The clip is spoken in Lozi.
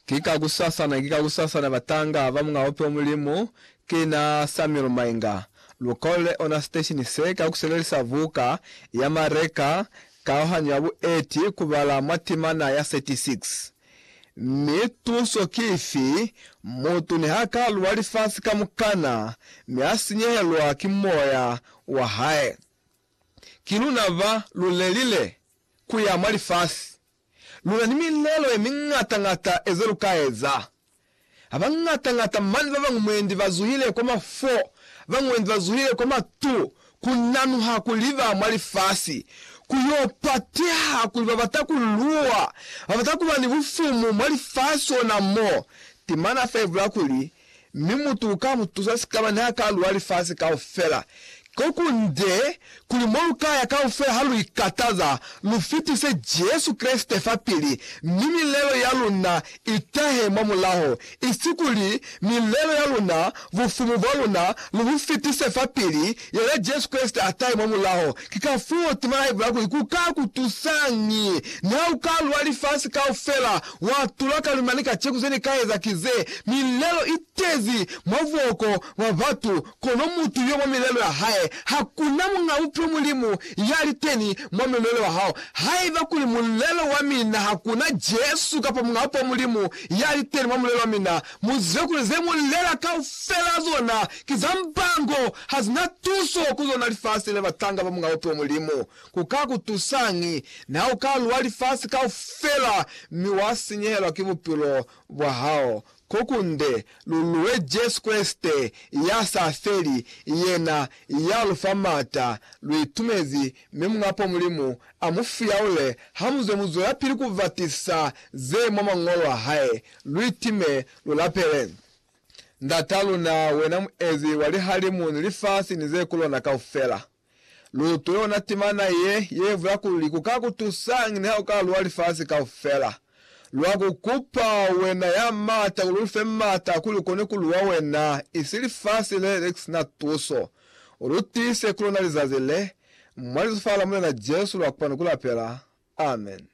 Ki ka kusasana, ki ka kusasana batanga ba Muñ'a Ope o Mulimu, ki na Samuel Mainga. Lu kolele ona siteshini se ka ku sebelisa buka ya Mareka, Kaohanyo ya Bueti, ku bala mwa timana ya 36. Mi tuso ki ifi? Mutu niha ka luwa lifasi kamukana, mi a sinyehelwa ki moya wa hae, ki luna ba lu lelile. ku ya mwa lifasi, lu na ni milelo ye miñata-ñata eze lu ka eza. Ha bañata-ñata mane ba bañwi mwendi ba zuhile kwa mafo, ba mwendi ba zuhile kwa matu, ku nanuha kuli ba mwa lifasi, ku yo pateha kuli ba bata ku luwa, ba bata ku ba ni bufumu mwa lifasi ona mo. Temana fa ibula kuli, Mi mutu uka mu tusa sikaba niha ka luwa lifasi kaufela. Koku nde kuli mo lu ka ya kaufela ha lu ikataza, lu fitise Jesu Kreste fapili, mi milelo ya luna i tahe mwa mulaho, isi kuli milelo ya luna, bufumu bwa luna, lu bu fitise fapili Yena Jesu Kreste a tahe mwa mulaho. Ki kafuo tema ya ibula kuli, Ku ka ku tusañi? Niha u ka lwa lifasi kaufela, wa tula ka lwi mane kaceku ze ni ka eza ki ze, milelo i tezi mwa buhoko bwa batu, kono mutu yo mwa milelo ya hae. Ha ku na muñ'a buphilo Mulimu ya li teni mwa mulelo wa hao. Haiba kuli mulelo wa mina ha ku na Jesu kapa muñ'a buphilo Mulimu ya li teni mwa mulelo wa mina, mu zibe kuli ze mu lela kaufela zona Ki za mbango, ha zi na tuso ku lona lifasi le batanga ba Mulao to Mulimu. Ku ka ku tusañi na u ka lwa lifasi kaufela mi wa sinyehelwa ki bupilo bwa hao? Ko kunde, lu lwe Jesu Kreste ya sa feli, yena ya lu fa m'ata. Lu itumezi, mi Mulao to Mulimu a mu fuyaule ha mu zwe mu zwelapili ku ba tisa ze mwa Mañolo a hae. Lu itime, lu lapele. Ndat'a luna, wena Muezi wa lihalimu ni lifasi ni ze ku lona kaufela, lu utwe yona timana ye, ye bula kuli, Ku ka ku tusañi niha u ka luwa lifasi kaufela? Lwa ku kupa, wena ya m'ata, kuli u lu fe m'ata kuli u kone ku luwa wena, isi lifasi le le si na tuso. U lu tiise ku luna lizazi le, mwa Lizufa la Mulena Jesu lwa kupani ku lapela. Amen.